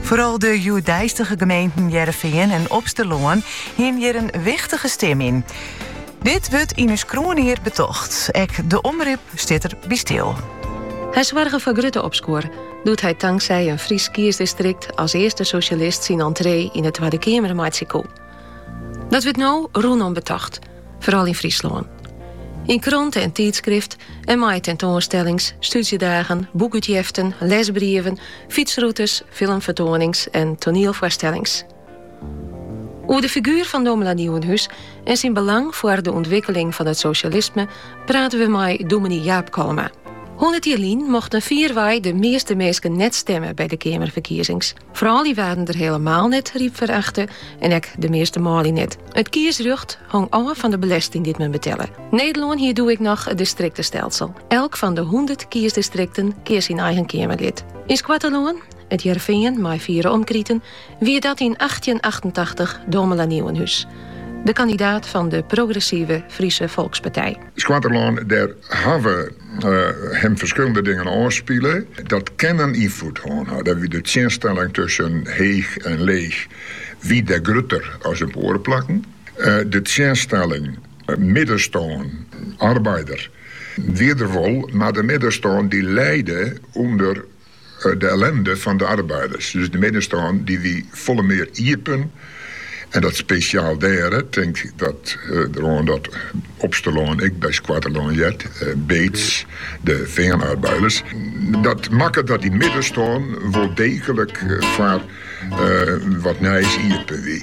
Foaral de hjoeddeistige gemeenten Hearrenfean en Opsterlân hiene hjir in wichtige stim yn. Dit wurdt yn ús kroanjier betocht. Ek de Omrop stiet der by stil. Hy soarge foar grutte opskuor doe't hy tanksij in Frysk kiesdistrikt as earste sosjalist syn entree yn de Twadde Keamer meitsje koe. Dat wurdt no rûnom betocht. foaral yn Fryslân. Yn kranten, tydskriften, mei tentoanstellings, stúdzjedagen, boekútjeften, lesbrieven, fytsrûtes, filmfertoanings en toanielfoarstellings. Oer de figuer fan Domela Nieuwenhuis en syn belang foar de ûntwikkeling fan it sosjalisme prate we mei dominee Jaap Kalma. Hûndert jier lyn mochten fierwei de measte minsken net stimme by de Keamerferkiezings. Froulju waarden der helemaal net ryp foar achte en ek de measte manlju net. It kiesrjocht hong ôf fan de belesting dy't men betelle. Nederlân hie doe ek noch it distriktestelsel. Elk fan de hûndert kiesdistrikten keas syn eigen keamerlid. Yn Skoatterlân, It Hearrenfean mei fier omkriten, wie dat yn achttjinachtentachtich Domela Nieuwenhuis, de kandidaat fan de progressive Friese Folkspartij. Skoatterlân, dêr hawwe him ferskillende dingen ôfspile. Dy't kinne ynfloed hân ha. Dêr wie de tsjinstelling tusken heech en leech wie dêr grutter as op oare plakken. De tsjinstelling middenstân, arbeider, wie der wol, mar de middenstân dy lijde ûnder. De ellinde fan de arbeiders, dus de middenstân, dy wie folle mear iepen en dat spesjaal dêr. Tink deroan dat Opsterlân ek by Skoatterlân heart, Beets, de feanarbeiders. Dat makket dat dy middenstân wol deeglik foar wat nijs iepen wie.